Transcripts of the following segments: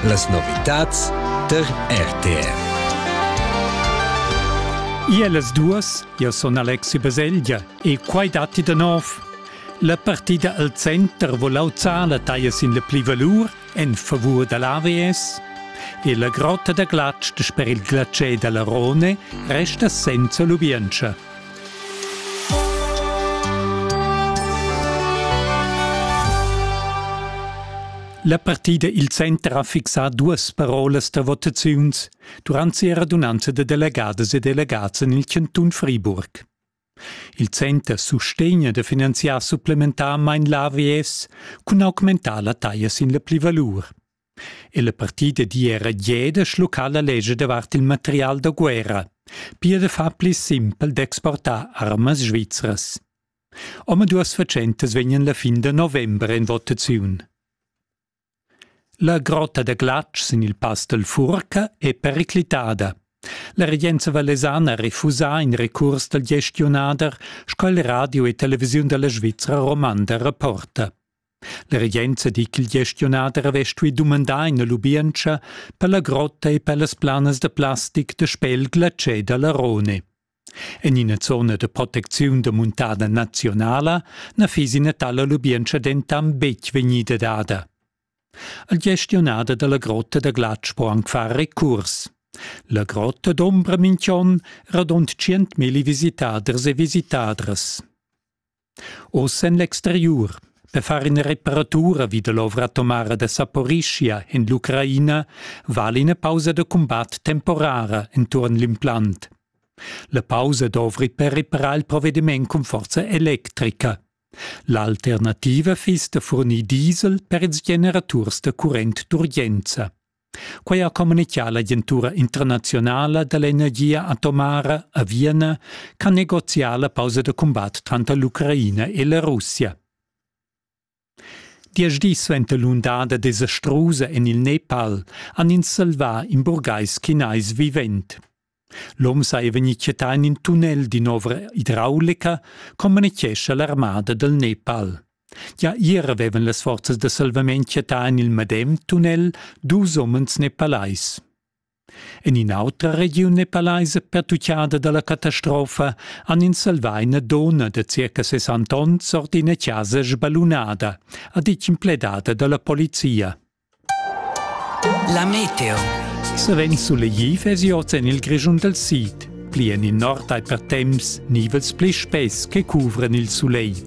Las novitads der RTR. Ia las duas, io son Alexi Baselgia e quai datti da nov. La partida al center vo lauza la taglia sin la plivalur en favur da l'AVS e la grotta da glatsch per il glatschè da la Rone resta senza lubientscha. La partida il center ha fixà duas parolas da votaziuns durant sia radunanza da delegadas e delegats en il chantun Friburg. Il center sustegna da finanziar supplementarmain l'AVS cun augmentar la taglia sin la plivalur. Ella partida d'ira Jeda schlucca la lescha davart il material da guerra. Pia da far pli simpel d'exportar armas svizras. Omaduas fatschentas vegnan la fin da november en votaziun. La grotta da glatsch sin il pass del Furca è periclitada. La regenza valesana ha refusà in recurs dal gestionader, sco il radio e televisiun della Svizzera romanda rapporta. La regenza digl gestionader havess stui dumandar ina lubientscha per la grotta e per las planas da plastic da spel glatschè dalla Rhone. En ina zona da protecziun da muntada nazionala na fiss ina tala lubientscha dentant betg vegnida dada. Il gestionader dalla grotta da glatsch po anc far recurs. La grotta d'ombra minch'on radund 100.000 visitaders e visitadras. Oz en l'exteriur. Per far ina reparatura vid l'ovra atomara da Saporischia en l'Ucraina vala ina pausa da cumbat temporara enturn l'implant. La pausa dovri per reparar il provvediment cun forza electrica. L'alternativa fiss da furnir diesel per ils generaturs da current d'urgenza. Quei ha communitgà l'agentura internazionala dall'energia atomara a Vienna ch'ha negozià la pausa da cumbat tranter l'Ucraina e la Russia. Diesch dis suenter l'undada desastrusa en il Nepal han ins salvà in burgais chinais vivent. L'hom saja vegnì quietà en in tunnel d'in'ovra idraulica, communitgescha l'armada dal Nepal. Gia ier avevan las forzas da salvament quietà en il medem tunnel dus umens nepalais. En in'autra regiun nepalaisa pertuccada da la catastrofa han ins salvà ina donna da circa 60 onns ord ina chasa sballunada, ha ditg in pledada da la polizia. La meteo. Savens sulegli vesi oz en il Grischun dal sid. Pli en il nord hai per temps nivels pli spess che cuvran il sulegl.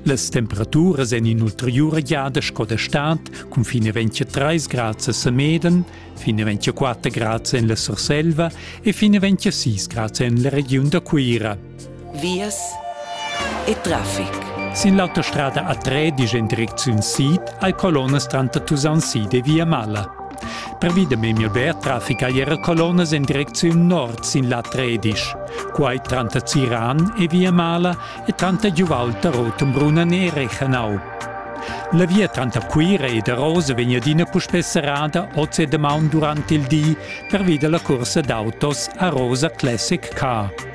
Las temperaturas en in'ulteriura giada sco da stad cun fine 23 grads a Sameden, fine 24 grads en la Surselva e fine 26 grads en la regiun da Cuira. Vias e traffic. Sin l'autostrada A3 disch in direcziun sid hai colonnas tranter Tusaun sid e Via Malla. Pervi da memia bler traffic hai era colonnas en direcziun nord sin l'A3 disch. Quai tranter Ziran e Via Malla e tranter Giuvalta, Rotenbrunn e Rechenau. La via tranter Cuira e da Rose vegn adina puspè serrada oz e damaun durant il di pervi da la cursa d'autos a Rosa Classic Car.